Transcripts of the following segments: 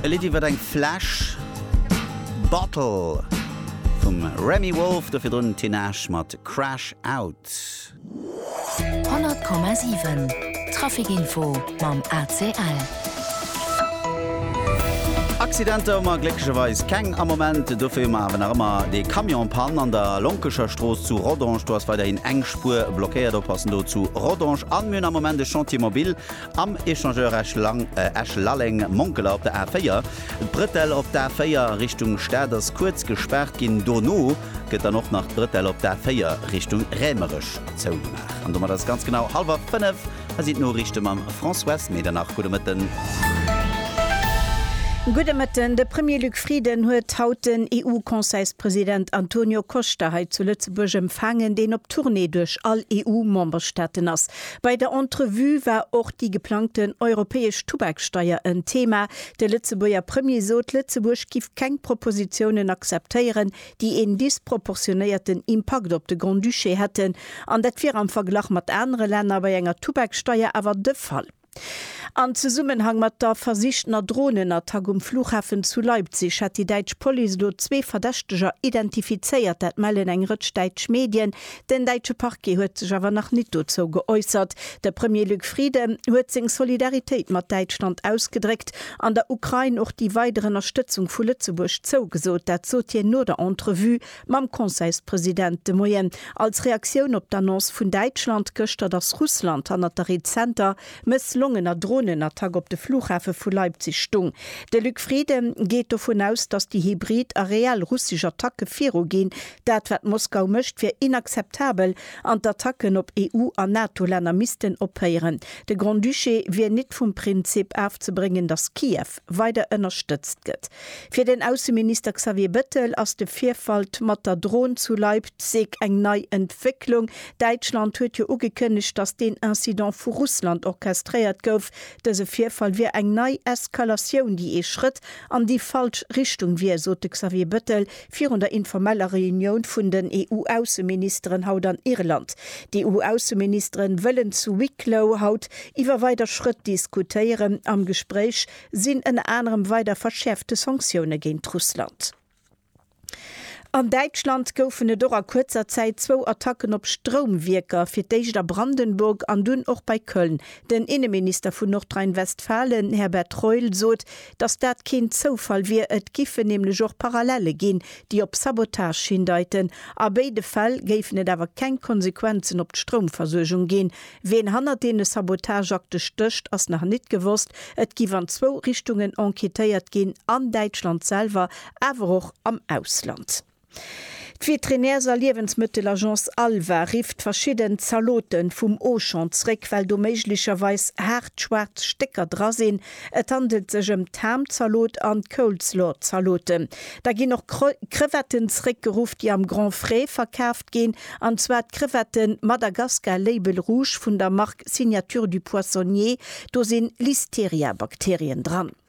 E Lidd iwwert eng Fläsch, Bottle, vum Remi Wolf. Do virdrun Tinashe mat Crash Out. 100,7 Traficinfo mam ACL. Accidenter hu mer glécklecherweis keng am Moment. Dofir hu mer awer nach ëmmer dee Camion en panne an der Lonkecher Strooss zu Rodange. Do ass weiderhin eng Spuer blockéiert. Oppassen do zu Rodange. An mir hunn am Moment e Chantier mobile. Am Échangeur Esch-Lalleng, Monkeler op der A4, d'Brëtell op d'A4 a Richtung Stad ass kuerz gespaart ginn. Dono gëtt dann och nach d'Brëtell op d'A4 Richtung Rämerech zougemaach. An domat ass et ganz genau hallwer fënnef. Hei sinn d'Noriichte mam Françoise Medernach. Gudde Mëtten. Gudde Mëtten. De Premier Luc Frieden huet haut den EU-Conseilspresident Antonio Costa hei zu Lëtzebuerg empfaangen, deen op Tournée duerch all EU-Memberstaaten ass. Bei der Entrevue war och déi geplangten europäesch Tubaksteier en Thema. De Lëtzebuerger Premier sot, Lëtzebuerg giff keng Propositiounen akzeptéieren, déi een disproportionéierten Impakt op de Grand-Duché hätten. An dat wier am Verglach mat anere Länner bei enger Tubaksteier awer de Fall. Am Zesummenhang mat der versichtener Dronenattack um Flughafen zu Leipzig hätt déi däitsch Police elo zwee Verdächteger identifizéiert. Dat mellen eng Rëtsch däitsch Medien. Den däitsche Parquet huet sech awer nach nit dozou geäussert. De Premier Luc Frieden huet seng Solidaritéit mat Däitschland ausgedréckt an der Ukrain och déi weider Ënnerstëtzung vu Lëtzebuerg zougesot. Dat sot hien no der Entrevue Mam Conseilspresident de Moien, als Reaktioun op d'Annonce vun Däitschland gëschter, datt Russland hannert der rezenter mësslongener Dronenattack op de Flughafe vu Leipzig stung. De Luc Frieden geet dovun aus, datt déi hybrid a reell russesch Attacke viruginn. Dat wat Moskau mécht, wier inakzeptabel an d'Attacken op EU an NATO-Länner missten ophéieren. De Grand-Duché wier nit vum Prinzip afzebréngen, datt Kiew. weider ënnerstëtzt gëtt. Fir den Ausseminister Xavier Bettel ass de Virfall mat der Dron zu Leipzig eng nei Entwécklung. Däitschland huet jo ugekënnegt, datt deen Incident vu Russland orchestréiert gouf. Dëse Virfall wier eng nei Eskalatioun, déi ee Schrëtt an déi falsch Richtung wier, sot de Xavier Bettel, Virun der informeller Reunioun vun den EU-Ausseministeren haut an Irland. D'EU-Ausseministeren wëllen zu Wicklow haut iwwer weider Schrëtt diskutéieren. Am Gespréich sinn ënner anerem weider verschäerfte Sanktioune géint Russland. An Däitschland goufen et och a kuerzer Zäit zwou Attacken op Stroumwierker, fir d'éischt a Brandenburg an dunn och bei Köln. Den Inneminister vun Nordrhein-Westfalen Herbert Reul sot, Dass dat keen Zoufall wier, et giffen nämlech och Parallelle ginn, déi op Sabotage hindeiten. A béide Fäll géifen et awer keng Konsequenzen op d'Stroumversuergung ginn. Ween hannert deene Sabotageakte stécht, ass nach nit gewosst. Et giff an zwou Richtungen enquêtéiert ginn, an Däitschland selwer, awer och am Ausland. D'Veterinärs a Liewensmëttelagence Alva rifft verschidden Zalote vum Auchan zréck, well do méiglecherweis haart schwaarz Stécker dra sinn. Et handelt sech ëm d'Ham-Zalot an d'Coleslaw-Zalote. Da ginn och Crevetten zréckgeruff, déi am Grand Frais verkaaft ginn, an zwar d'Crevette Madagascar Label Rouge vun der Mark Signature du Poissonnier. Do si Listeria-Bakterien dran.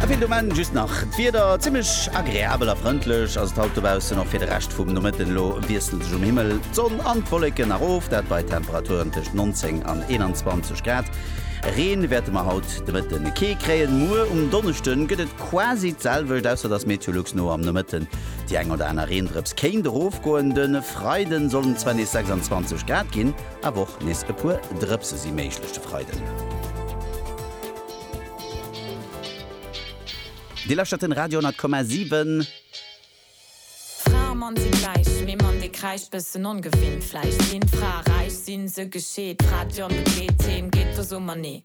A fir de Moment just nach d'Wieder, Zimmlech agreabel a frëndlech ass et haut dobaussen. Och fir de Rescht vum Nomëtten elo wiessle sech um Himmel d'Sonn an d'Wolleken erof, dat bei Temperaturen tëscht 19 an 21 Grad. Reen wäerte mer haut de Mëtten kee kréien. Muer um Donneschde gëtt et quasi d'selwecht, ausser dass MeteoLux no am Nomëtten déi eng oder aner Reendrëps kéint erofgoen. De Freiden sollen et zwar nees 26 Grad ginn. Awer och nees e puer Drëpse si méiglech de Freiden. Dir lauschtert den Radio 10,7. Fra a Mann sinn gläich, mee Mann dee kräischt, bëssen ongewinnt vläicht. Ginn d'Frae räich, sinn se gescheet, d'Fra d'Jonn begleet, d'Heem geet, do soe mer nee.